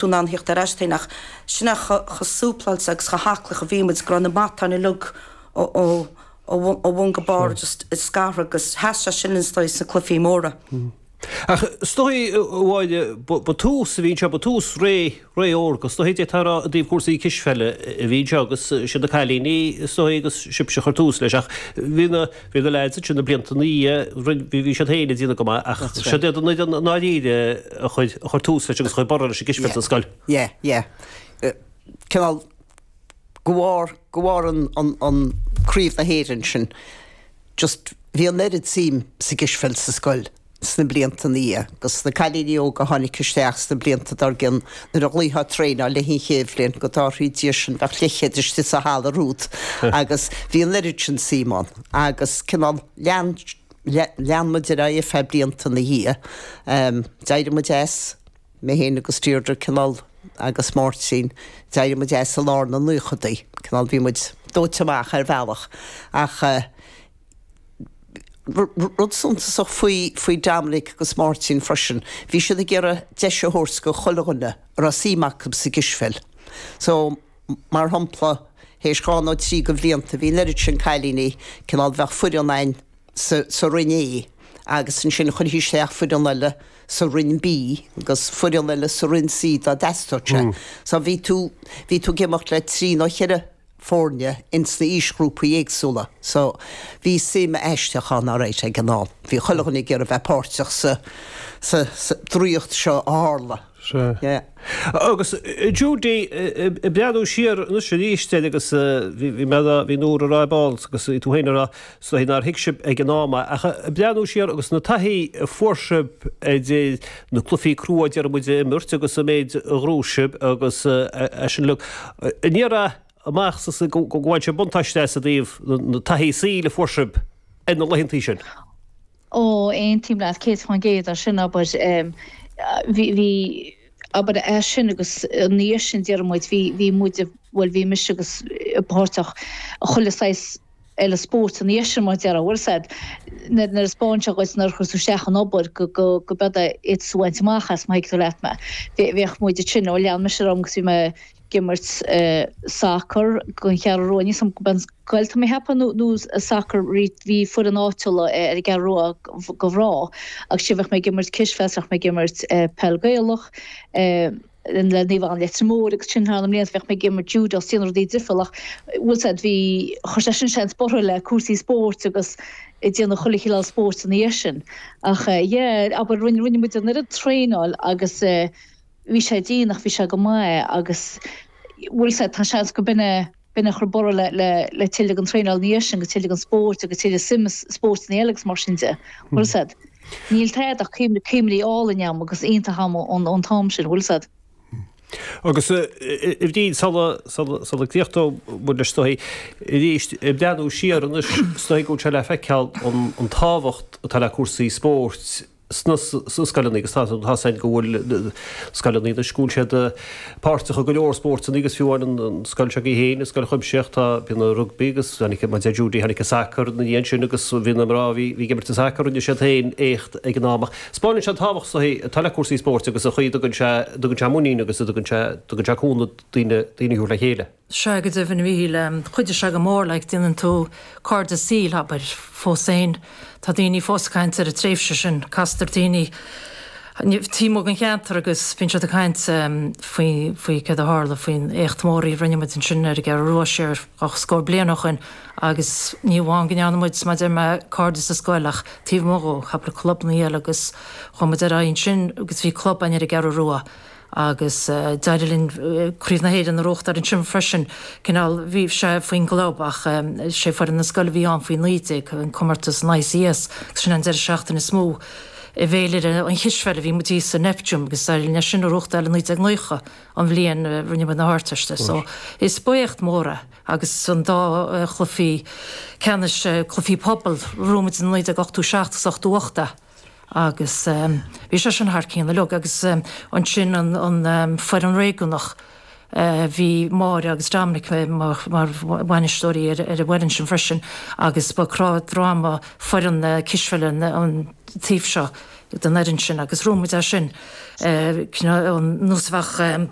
tú in ann a theacht ar ais féin, ach sin é chomh súpláilte agus chomh haclaí a bhí muid, go raibh na matáin uilig ó bhun go barr just scartha agus sheas sé sin dhúinn is dóigh sna cluifí móra. Ach is dóigh amháin ba tús a bhí anseo, ba tús ré órga, is dóigh, d'fhéadfá a rá i dtaobh chúrsaí cispheile a bhí anseo agus is iad na cailíní is dóigh agus sibhse a chuir tús leis ach bhí na Bhí na leaids ansin na blianta ina dhiaidh, bhí siad féin ag déanamh go maith ach seo d'fhéadfá a rá i ndáiríre a chuir, a chuir tús leis agus a chuir borradh leis an gcispheil sa scoil. Yeah, yeah. Cineál de bharr, de bharr an, an, an craobh na hÉireann sin, just bhí an oiread suim sa gcispheil sa scoil sna blianta ina dhiaidh, agus na cailíní óga a tháinig isteach sna blianta dár gcionn, nuair a ghlaofá traenáil le haghaidh an chéad bhliain, go dtarrthaí Dia sinn, bheadh leithchéad istigh sa halla romhat, agus bhí an oiread sin suim ann, agus cineál, lean, lean muid ar aghaidh ar feadh blianta ina dhiaidh. D'éirigh muid as, mé féin agus Deirdre, cineál, agus Máirtín, d'éirigh muid as i lár na naochadaí, cineál, bhí muid dóite amach ar bhealach, ach, Rud suntasach faoi Dominic agus Máirtín freisin, bhí siad ag iarraidh deis a thabhairt do chuile dhuine a raibh suim acu sa gcispheil. So, mar shampla, théis dhá nó trí de bhlianta, bhí an oiread sin cailíní, cineál, bheadh foireann againn sa roinn A agus ansin chuirfí isteach foireann eile sa roinn B agus foireann eile sa roinn C dá dteastódh sé. So, bhí tú, bhí tú ag imeacht le trí nó cheithre. foirne ins na aoisghrúpaí éagsúla so bhí suim aisteach ann alright ag an am. Bhí chuile dhuine ag iarraidh bheith páirteach sa draíocht seo a tharla. Sea. Agus Judy ag breathnú siar anois aríst air agus bhí mé a' bhí Nóra a' rá ar ball agus bhí tú féin a' rá Is dóigh nár thuig sibh ag an am ach ag breathnú siar agus na taithí a fuair sibh idir na cluifí crua déarfaidh muid a imirt agus an méid a ghnóthaigh sibh agus é sin uilig aniar amach go bhain sibh buntáiste as i dtaobh na taithí saoil a fuair sibh ar na laethanta sin. Ó, aontaím leat céad faoin gcéad ar sin, abair. Bhí, abair, as sin agus ina dhiaidh sin déarfaidh muid, bhí muid, bhuel bhí mise agus páirteach i chuile saghas eile spóirt an iarthar mar déarfá. Bhuel séard, mar spáin sé dhuit nuair a chuir tú isteach an obair go, go, go bead a fhios a bhaint amach as má thuigeann tú leat mé. Bhí, bhíodh muid ag sin, ó lean mise orm agus bhí mé ag imirt sacar don Cheathrú Rua níos an, an gaolta mé cheapfá nó, nó sacar rí, bhí foireann áitiúla ar an gCeathrú Rua go bhrá agus sin bheadh mé ag imirt cispheil 's bheadh mé ag imirt peil Gaelach, le Naomh Anna Leitir Móir agus sin thar na mblianta bheadh mé ag imirt júdó agus ag déanamh rudaí difriúla ach bhfuil a fhios a'd bhí, chuir sé sin seans borrtha le cúrsaí spóirt agus ag déanamh chuile chineál spóirt ina dhiaidh sin ach yeah abair rinne, rinne muid an oiread traenála agus bhí sé dian ach bhí sé go maith agus bhfuil a fhios a'd tá seans go b'in eh. b'in a chuir borradh le, le, le tuilleadh traenáil ina dhiaidh sin agus tuilleadh spóirt agus tuilleadh suim i spóirteanna eile agus mar sin de, bhfuil a fhios a'd, níl tada ach cuimhní álainn a'm agus iontach a'm ón, ón t-am sin, bhfuil a fhios a'd. Agus a, a Bhriain, sula, sula, sula gcríochnóidh muid leis is dóigh arís, ag breathnú siar anois, is dóigh go bhfuil sé le feiceáil an, an tábhacht atá le cúrsaí spóirt, sna scoileanna agus tá a fhios a'm go bhfuil scoileanna anois, go bhfuil siad páirteach i go leor spórtanna agus fiú amháin an scoil seo í féin, an Scoil Chuimsitheach, tá, bíonn a' rugbaí agus tháinig, maidir le júdó, tháinig a' sacar 'na dhiaidh sin agus bhí na mná, bhí, bhí ag imirt a' sacar, rinne siad féin éacht ag an am ach 'spáineann sé an tábhacht atá le cúrsaí spóirt agus an chaoi a dtugann sé, a dtugann sé muinín agus a dtugann sé, a dtugann sé cúnamh daoine, daoine a thabhairt le chéile. Sea, go deimhin, a Mhíchíl, chuidigh sé go mór, like, déanann tú cairde saoil, abair. Fós féin, tá daoine fós ag caint ar an tréimhse sin, castar ar dhaoine taobh amuigh den cheantar agus bíonn siad ag caint faoi, faoi céard a tharla, faoin éacht mór a rinne muid ansin ar an gCeathrú Rua siar dhá scór bliain ó shoin agus ní hamháin go ndearna muid, mar a deir mé, cairde sa scoil ach taobh amuigh dhó, sna clubannaí eile agus chuaigh muid ar aghaidh ansin agus bhí club, an, ar an gCeathrú Rua. Agus d'éirigh linn Craobh na hÉireann a bhuachtáil ansin freisin. Cineál, bhí sé faoin gclub ach 'sé foireann na scoile a bhí ann faoi naoi déag, an comórtas an ICS, agus sin an deireadh seachtaine is mó i bhféilire an chispheile a bhí muid thíos sa Neptune agus d'éirigh linn é sin a bhuachtáil i naoi déag naocha, an bhliain a rinne muid na hArdteist. So, is ba éacht mór é. Agus an dá chluife ceannais, cluifí pobail, bhuaigh muid i naoi déag ochtó seacht agus ochtó hocht. Agus bhí sé sin thar cionn uilig. Agus ansin an fhoireann réigiúnach, bhí Máire agus Dominic mar bhainisteoirí ar an bhfoireann sin freisin agus ba cnámh droma foireann na cispheile an taobh seo den fhoireann sin agus bhuaigh muid é sin, ar nós a bheadh.